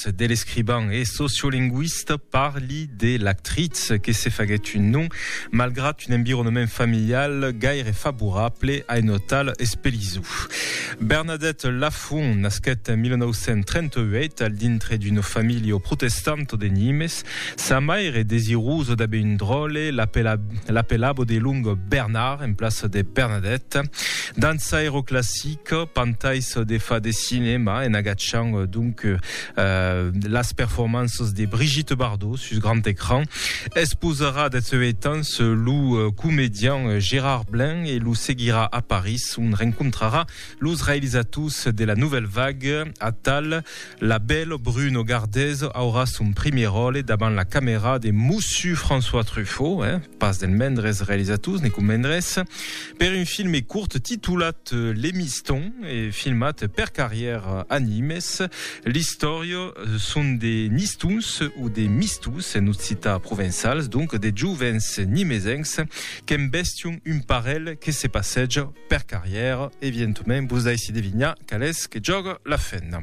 de l'escrivan e sociolingüista parli de l'actritz que se faguèt un nom malgrat un environnement familial gaire favorable a un hotal espelizou. Bernadette Lafont nasquèt en 1938 al dintre d'una familha protestanta de Nimes. Sa maire, desirosa d'aver un dròlle, l'apelava de long Bernard en plaça de Bernadette. Dança aeroclassica, pantais de fa de cinèma en agachant donc las performanças de Brigitte Bardot sus grand ecran. Esposarà deth seu heitans lo comedian Gérard Blain e lo seguirà a París, ont rencontrarà los realizators de la Nouvelle Vague, atal La belle Bruno Gardez aurà son primièr ròle davant la camèra de Mossu François Truffaut, eh? pas del mendres realizators, ne convendrètz, per un filme curt titolat Les Mistons e filmat per Carrièr a Nimes. L'istòria son de Nistons o de Mistons en occitan provençals, donc de jovens nimesencs qu'embèstion un parelh que se passèja per carrièr, evientoment vos daissi devinhar qual es que jòga la fenna.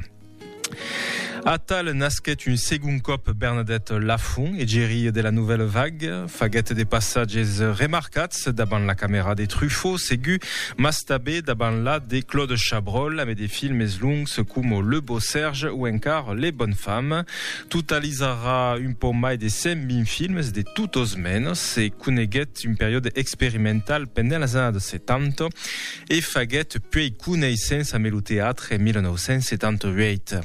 Atal nasquèt un segon còp Bernadette Lafont, egeria de la Nouvelle Vague, faguèt de passatges remarcats davant la camèra de Truffaut, segur, mas tabé davant la de Claude Chabrol, amé de filmes longs coma Le Beau Serge o encar Les Bonnes Femmes. Totalizarà un pauc mai de 120 filmes de totos menos e coneguèt Es un periòde experimental pendent las annadas 70 e faguèt puèi coneissença me lo teatre en 1978.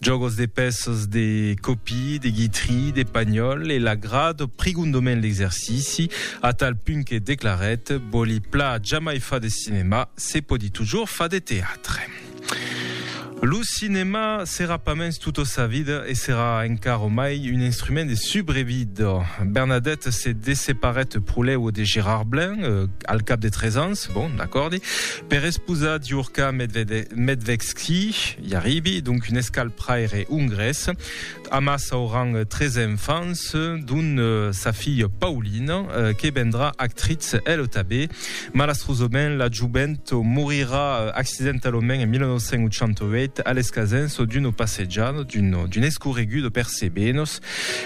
Jògos de pèças de copí, de guitry, de panhòl e l'agrad prigondoment l'exercici a tal punt que declarèt, Vòli pla jamai far de cinema, se pòdi tujor far de teatre. Lo cinèma serà pas mens tota sa vida e serà encara mai un instrument de subrevida. Bernadette se desseparèt pro lèu de Gérard Blain, al cap de tres ans, bon, d'acòrdi, per esposar Diurka Medvedevsky, i arribi, donc un escalpraire ongrés. Amassa auran tres enfants, dont sa filha Paulina, que vendrà actritz ela tanben. Malastrosament, la jovent morirà accidentalament en 1988 a l'escasens d'una passejada d'un escorregut per Sebenos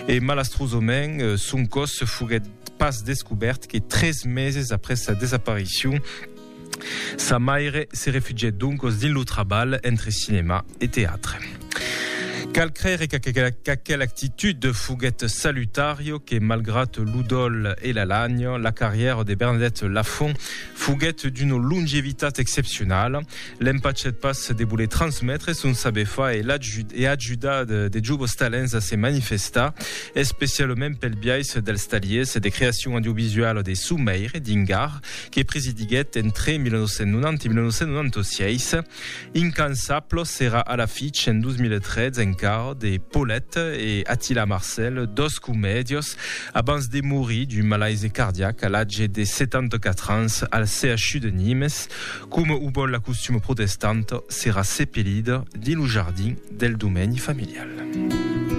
e malastrosament son còs foguèt pas descobèrt que tres meses après sa desaparicion. Sa maire se refugièt doncos dins lo trabalh entre cinèma e teatre. Cal crèire qu'aquela actitud foguèt salutària, que malgrat lo dòl e la lània, la carrièra de Bernadette Lafont foguèt d'una longevitat excepcionala. L'empachèt pas de voler transmetre son saber far e ajudar de jovos talents a se manifestar, especialament pel biais dels taliers de creacion audiovisuala de son maire, Dingar, que presidiguèt entre 1990 e 1996. Incansable serà a l'afich en 2013 encara de Paulette e Attila Marcel, dos comèdios, abans de morir d'un malaise cardiac a l'atge de 74 ans al CHU de Nimes. Coma o vòl la costuma protestanta, serà sepelida dins lo jardin del domeni familial.